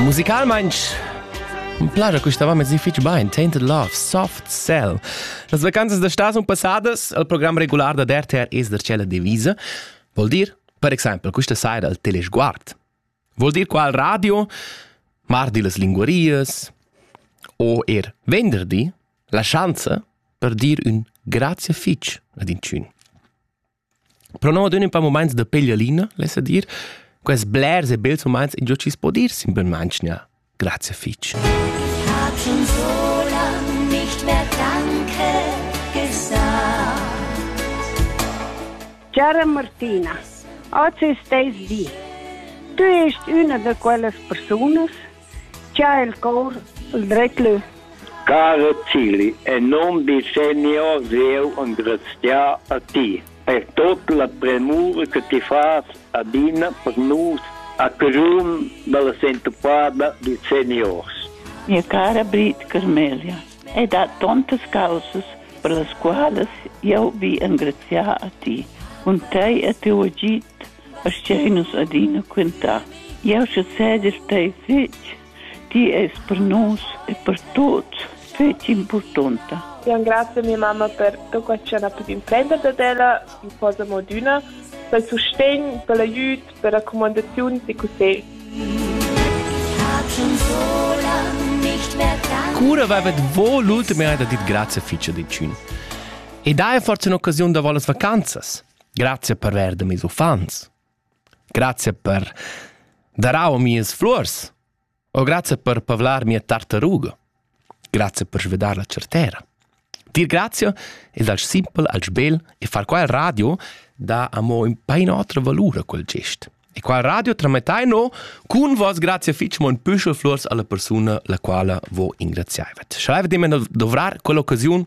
musicalmaintg plaja custava mezzi fitg bain. Tainted Love, Soft Cell. Las vacanzas da stas sun passadas al program regular da DRTR es da tschella divisa. Vol dir, per exempel, questa saira al telesguard. Vol dir qual radio? Mardi las linguarias? O er venderdi? La schanza per dir un grazie fitch ad in tschün. Però adüna ün pa mumaints da peglialina, lessa dir. Quels blers e bels mumaints ingio chi's po dir in bön mantgna. Grazie fich. Ich hab schon so lang nicht mehr Danke gesagt. Cara Martina, oggi è steis di. Tu esti una da quelle persone Cha el cor il dret leu. Cara Tilly, e non vi senior jeu engraziar a ti per tot la premura che ti fas adina per nus a carun dalla sentupada di seniors. Mia cara Brit Carmelia, hai dat tontas causas per las qualas jeu vi engraziar a ti, cun tei e tiu agid Aschia nus adina quentar. Jau sezegel tei fetg, ti eis per nus e per tuts fetg impurtonta. Io engrazio mia mamma per tot quel che ha pudi emprender dad ella in cosa mo d'üna, pel sustegn, pel aiüt, per racumandaziuns e cussegl. Cura avevet vo l'ultima eda dit grazie ficia dicin. E dai forza un'occasione da volas vacanzas. Grazie per verde mis uffants. Grazie per darau mias flurs. O grazie per pavlar mia tartaruga. Grazie per svedar la certera. Dir grazie ed al simpel al sbel e far qua il radio da amo in pain otra valura quel gest. E qua il radio tramettai no cun vos grazie fitch mon püschel flurs alla persuna la quala vo ingraziaivet. Schreivet immer dovrar quell'occasione